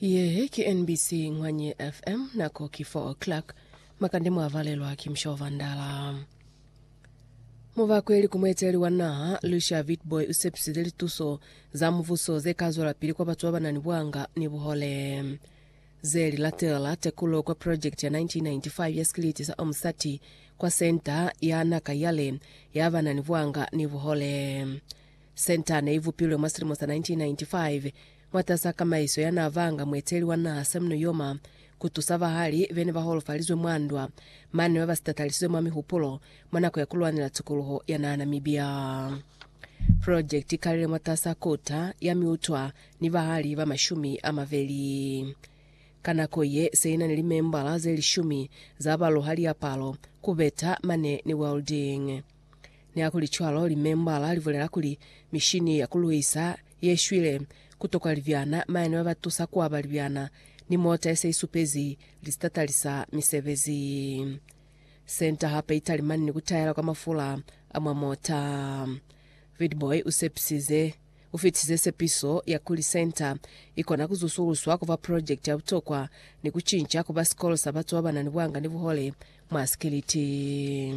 Ye ki NBC Ngwanye FM, nako ki 4 o'clock. Makande mwavalelwa ki Mshova Ndala. Mubakweli ku mueteleli wa naha, Lucia Witbooi usepisize lituso za mubuso zekazwelapili kwa batu babanani bwanga ni buhole. Zeli latela tekulo kwa project ya 1995 ya sikiliti sa Omusati kwa Centre ya Naka Yale ya banani bwanga ni buhole. Centre ne i vupilwe mwa silimo sa 1995 mwatas'a kamaiso ya n'a banga mueteli wa naha Sam Nujoma ku tusa bahali be ne ba holofalizwe mwa ndwa mane ba ba sitatalisizwe mwa mihupulo mwa nako ya ku lwanela tukuluho ya naha Namibia. Project i kalile mwatas'a kota ya miutwa ni bahali ba mashumi a mabeli. Ka nako ye, se i na ni limembala ze lishumi za ba luha liapalo, ku beta, mane ni welding. Nihakulicwalo, limembala libulela kuli, Mishini ya kuluisa ye shwile, kutokwa libyana, mayani babatusa kuaba libyana, ni mota yese isupezi listatali sa misebezi. Senta hape italimani ni kutayela kwa mafula a mwa mota. Vidboy usepisize ufitize sepiso ya kuli senta ikona kuzusuluswa kuba project ya butokwa ni kucinca kuba sikolo sa batu babanani bwanga ni buhole mwa sikiliti.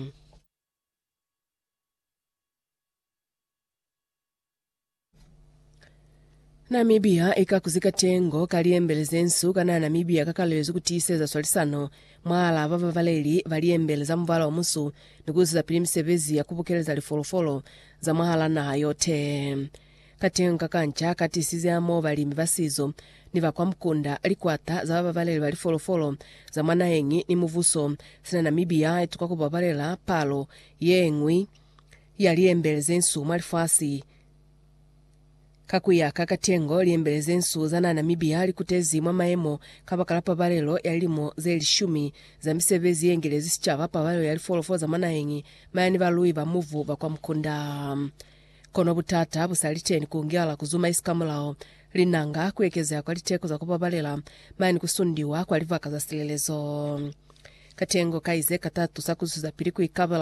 Namibia i ka kuzi katengo ka liembele ze nsu kana Namibia ka kalelezwi ku tiiseza swalisano mwahal'a ba babaleli ba liembele za mubala o musu ni ku isizapili misebezi ya ku bukeleza lifolofolo za mwahal'a naha yote. Kateñi ka kanca ka tisize hamoho balimi ba sizo ni ba kwa mukunda, likwata za bababaleli ba lifolofolo za mwa naheñi ni mubuso sina Namibia ye tuka ku babalela palo ye ñwi ya liembele ze nsu mwa lifasi. Ka ku ya ka Katengo, liembele ze nsu za naha Namibia li kutezi mwa mayemo kabakala pabalelo ya lilimo ze lishumi za misebezi ye ngelezi sicaba, pabalelo ya lifolofolo za mwa naheñi, maya ni balui ba mubu ba kwa mukunda. Kono butata bu sa li ceni ku ngala ku zumaisi ka mulao, linanga, ku ekezeha kwa liteko za ku babalela, mane ku sundiwa kwa libaka za silelezo. Katengo kai ze katatu sa ku zwezapili ku ikabela